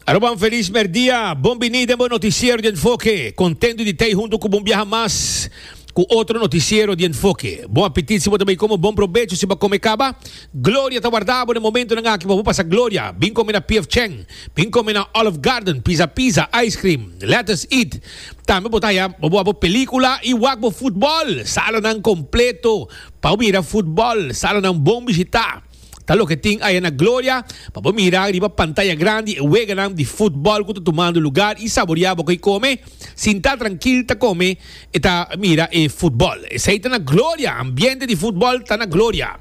Aruba, un feliz merdia. Bon bini den bo noticiero di enfoke. Contento di tei hunto cu bon biaha mas cu otro noticiero di enfoke. Bon apetit si bo ta bay como, bon probecho si bo a come caba. Gloria ta warda bo den momentonan aki pa bo pasa gloria. Bin come na PF Chang, bin come na Olive Garden, Pizza Pizza, Ice Cream, Let Us Eat. Tambe bo ta haya pa bo a bo pelicula y wak bo football. Salanan completo pa bo mira football. Salanan bon bishita. Ta loke tin aya na Gloria pa bo mira riba pantaya grandi e weganan di futbòl ku ta tumando lugar i saboriá bo ko'i kome. Sintá trankil ta kome i ta mira e futbòl. Esei ta na Gloria! Ambiente di futbòl ta na Gloria.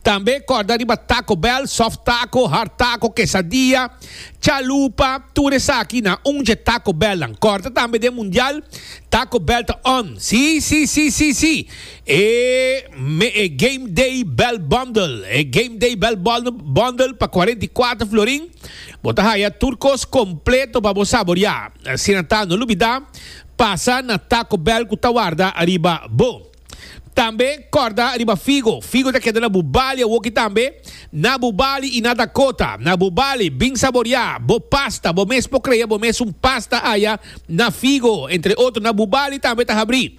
Tambe kòrda riba Taco Bell, Soft Taco, Hard Taco, Quesadilla, Chalupa, tur esaki na un dje Taco Bellnan. Kòrda tambe den Mundial, Taco Bell ta on. Sí, sí, sí, sí, sí! E me e Game Day Bell Bundle. E Game Day Bell Bundle pa cuarenta i cuater florin. Bo ta haya tur cos completo pa bo saboria. Asina ta no lubida pasa na Taco Bell cu ta warda ariba bo. Tambe corda riba Figo. Figo ta keda na bo bali awoki tambe. Na bo bali y na Dakota. Na bo bali, bin saboria bo pasta. Bo mes por cree bo mes un pasta aya na Figo. Entre otro na bo bali tambe ta habri.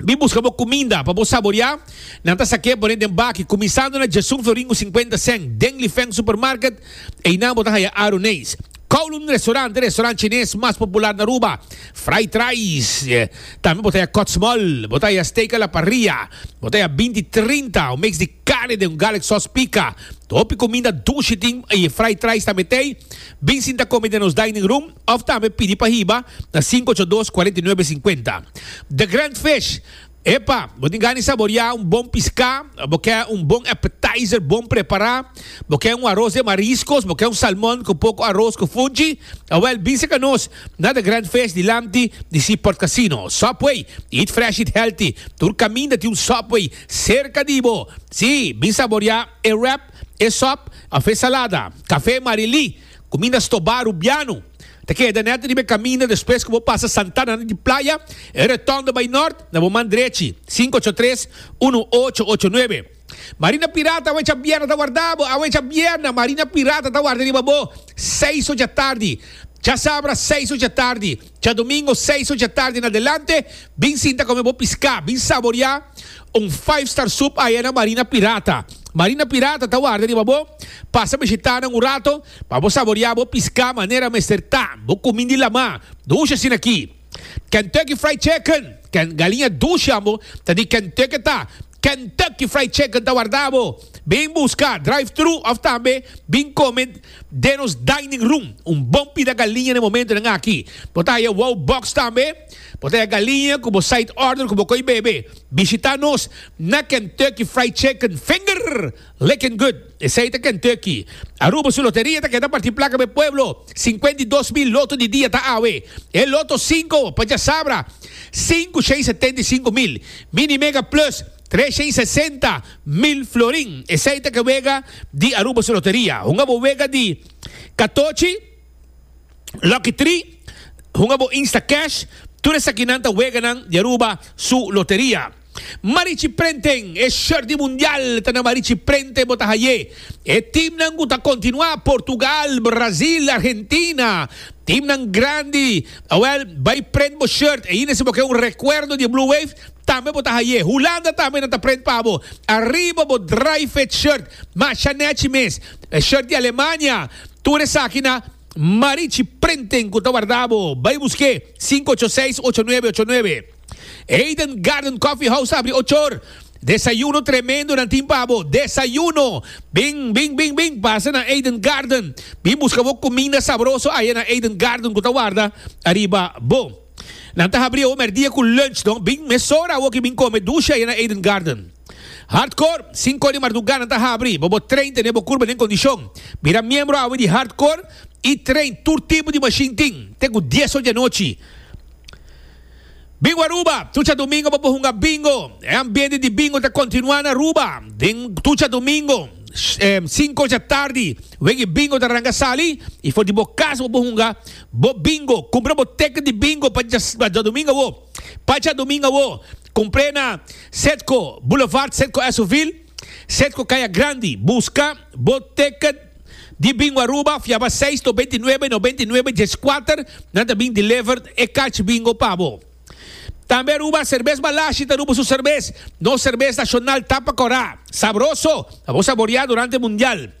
Bin buska bo kuminda pa bo saboriá. Nan ta sak'é pon'é den baki, kuminsando na Jason Floringu sinkuenta sèn, den Lifeng Supermarket, einan bo ta haya Aruneis, Kowloon Restaurant, e restaurant chines mas popular na Aruba, Fried Rice, tambe bo ta haya Cott's Mall, bo ta haya Steak a la Parrilla, bo ta haya Binti Trinta, un mix di carne den un garlic sauce pica. Hopi kuminda dushi tin y e Fried Rice tambe t'ey. Bin sinta kome den nos dining room. Of tambe pidi pa hiba na sinku ocho dos kuarenta i nuebe sinkuenta. The Grand Fish, Epa, bo tin gana di saboriá un bon piská? Bo kè un bon appetizer bon prepará? Bo kè un aros den mariskos? Bo kè un salmon ku poko aros ku funchi? Awèl, bin seka nos na The Grand Fish dilanti di si Port Casino. Subway, Eat fresh, eat healthy. Tur kaminda tin un Subway serka di bo. Sí, bin saboriá e wrap, e sòp òf e salada. Kafé Marilí. Kuminda stobá Rubiano ta keda nèt riba e kaminda despues ku bo pasa Santana na di playa, e reton di bai nòrt na bo man drechi, sinku ocho tres, unu ocho ocho nuebe. Marina Pirata awe cha bierna ta warda bo, awe cha bierna Marina Pirata ta warda riba bo seis ocha tardi, cha sabra seis ocha tardi. Djadomingo seis ocha tardi en adelante, bin sinta come bo pisca, bin saboria un five star soup aya na Marina Pirata. Marina Pirata ta warda riba bo, pasa bishita nan un rato pa bo saboria bo pisca manera mester ta, bo cumi di lama, dush asina aki. Kentucky Fried Chicken, ken, galiña dush yambo ta di Kentucky ta, Kentucky Fried Chicken ta warda bo, bin busca drive through of tambe bin come. Den nos dining room un bon pida galiña na momentonan aki. Bo ta haya wow box tambe. Bo ta haya galiña cu bo side order cu bo coi bebe. Bishita nos na Kentucky Fried Chicken, finger licking good. Esey ta Kentucky. Aruba su loteria ta keda parti placa pa e pueblo. Cincuenta y dos mil loto di dia ta awe. E loto cinco pa djasabra. Cinco, shei, setenta y cinco mil. Mini Mega Plus. Tresha i sesenta mil florin, esei ta ke wega di Aruba su loteria. Hunga bo wega di katochi, Lucky Three, hunga bo Insta Cash, tur esakinan ta weganan di Aruba su loteria. Marichi Prenten, E short di Mundial ta na Marichi Prenten bo ta haye. E timnan ku ta kontinuá, Portugal, Brazil, Argentina, timnan grandi, awèl bai prent bo short ainda si bo ke un rekuerdo di Blue Wave, Tambe bo ta haye. Hulanda tambe nan ta prent pa bo. Ariba bo Drijfit shirt. Masha nechi mes. E shirt di Alemania. Tur esaki na Marichi Printing cu ta warda bo. Bay buske. Sinku ocho seis ocho nuebe ocho nuebe. Eden Garden Coffee House ta abri ocho or. Desayuno tremendo nan tin pa bo. Desayuno. Bin bin bin bin pasa na Eden Garden. Bin buska bo cuminda sabroso aya na Eden Garden cu ta warda ariba bo. Nan ta habri awo merdia ku lunch, dor bin mesora awoki bin kome dusha e na Eden Garden. Hardcore, sinku di marduga nan ta habri, bo bo train tene bo kurba den kondishon. Bira miembro awe di Hardcore i train tur tipo di mashin tin te ku dies ocho di anochi. Bingo Aruba, tucha domingo bo por hunga bingo. E ambiente di bingo ta kontinua na Aruba den tucha domingo. Sinku ocha tardi wen e bingo ta ranga sali i for di bo kas bo por hunga. Bo bingo, cumpra bo teken di bingo pa djadomingo awo. Pa djadomingo awo, cumpre na Cedco Boulevard, Cedco Esovil, Cedco Caya Grandi. Busca bo teken di bingo Aruba, fiaba seis noventa i nuebe, noventa i nuebe diescuater, nan ta bin deliver e cachi bingo pa bo. Tambe Aruba Cervez Malashi ta Aruba su cervez, nos cervez nacional tapa cora, sabroso, pa bo saborea durante mundial.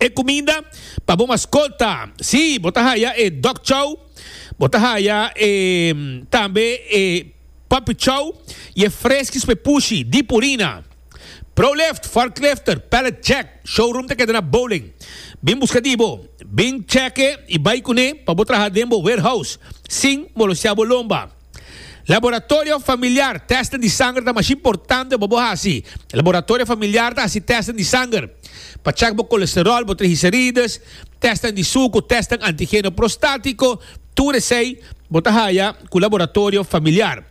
e cuminda pa bo mascota. Sí, bo ta haya e dog chow, bo ta haya e tambe e puppy chow y e freskis pa e pushi, di purina. Pro lift, fork lifter, pallet jack, showroom ta keda na Bowling. Bin busca di bo, bin cheque y bay cune pa bo traha den bo warehouse sin molosia bo lomba. Laboratorio familiar, testen di sanger ta masha importante pa bo hasi. Laboratorio familiar ta hasi testen di sanger pa chek bo kolesterol, bo trigicerides, testen di suku, testen antigeno prostatiko, tur esei bo ta haya ku laboratorio familiar.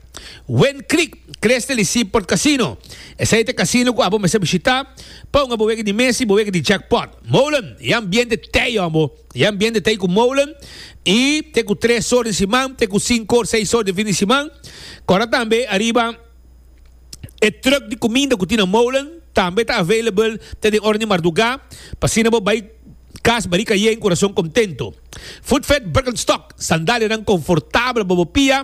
Wind Creek, Crystal i Seaport Casino, esei ta casino ku abo mester bishita pa un abo wega di mesa i bo wega di jackpot. Molen i ambiente tei ombo. E ambiente ta ei ku molen i ta ei ku tres or di siman, ta ei ku sinku or, seis or di fin di siman. Kòrda tambe ariba e trùk di kuminda ku tin na molen tambe ta available te den oranan di mardugá, pa asina bo bai kas barika yei ku kurason kontentu. Footfed Birkenstock, sandalianan konfortabel pa bo pia,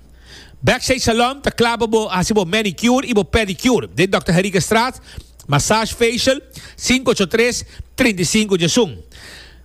Backstage Salon ta kla pa bo hasi bo manicure i bo pedicure den Dòkter Herigastraat, Massage Facial, sinku ocho tres, trinta i sinku Jasun.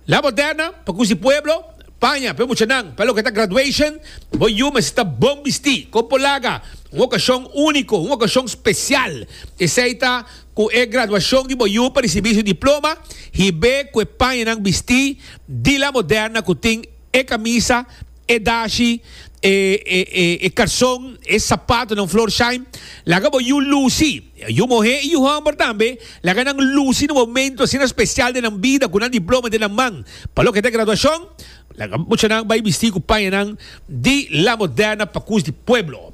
La Moderna, pa kusi pueblo, Paña, p'e muchanan, pa loke ta graduation, bo yu mester ta bon bistí, kon por laga un okashon úniko, un okashon spesial. Esei ta ku e graduashon di bo yu pa risibí su diploma, hib'é ku e pañanan bistí di La Moderna ku tin e kamisa, e dashi, e karson, e sapatonan Florsheim, laga bo yu lusi, yu muhé i yu hòmber tambe, laga nan lusi na momentu asina spesial den nan bida ku nan diploma den nan man. Pa loke ta graduashon, laga muchanan bai bistí ku pañanan di la moderna pa kus di pueblo.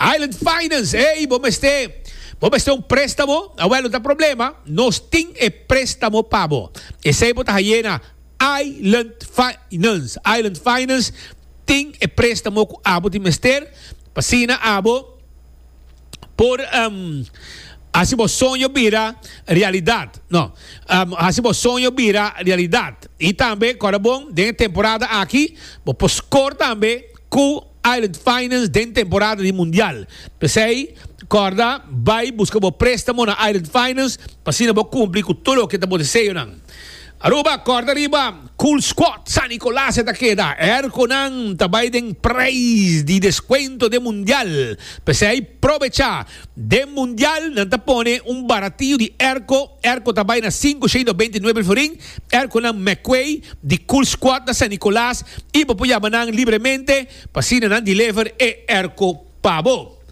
Island Finance, Ey, bo mester bo mester un préstamo? Awèl, no ta problema, nos tin e préstamo pa bo. Esei bo ta hayé na Island Finance, Island Finance tin e préstamo ku abo tin mester pa asina abo por hasi bo soño bira realidat, no, hasi bo soño bira realidat. I tambe kòrda bon den e temporada aki bo por skor tambe ku. Island Finance den temporada di Mundial. P'esei, kòrda bai buska bo préstamo na Island Finance pa asina bo kumpli ku tur loke ta bo deseonan. Aruba, kòrda riba, Cool Squad San Nicolas e ta keda. Airkonan ta bai den prijs di deskuento den Mundial. P'esei, probechá Den Mundial nan ta pone un baratiyo di erko, erko ta bai na sinku sheido beinti nuebe florin, erkonan McQuay di Cool Squad na San Nicolas y bo por yama nan libremente pa asina nan deliver e erko pa bo.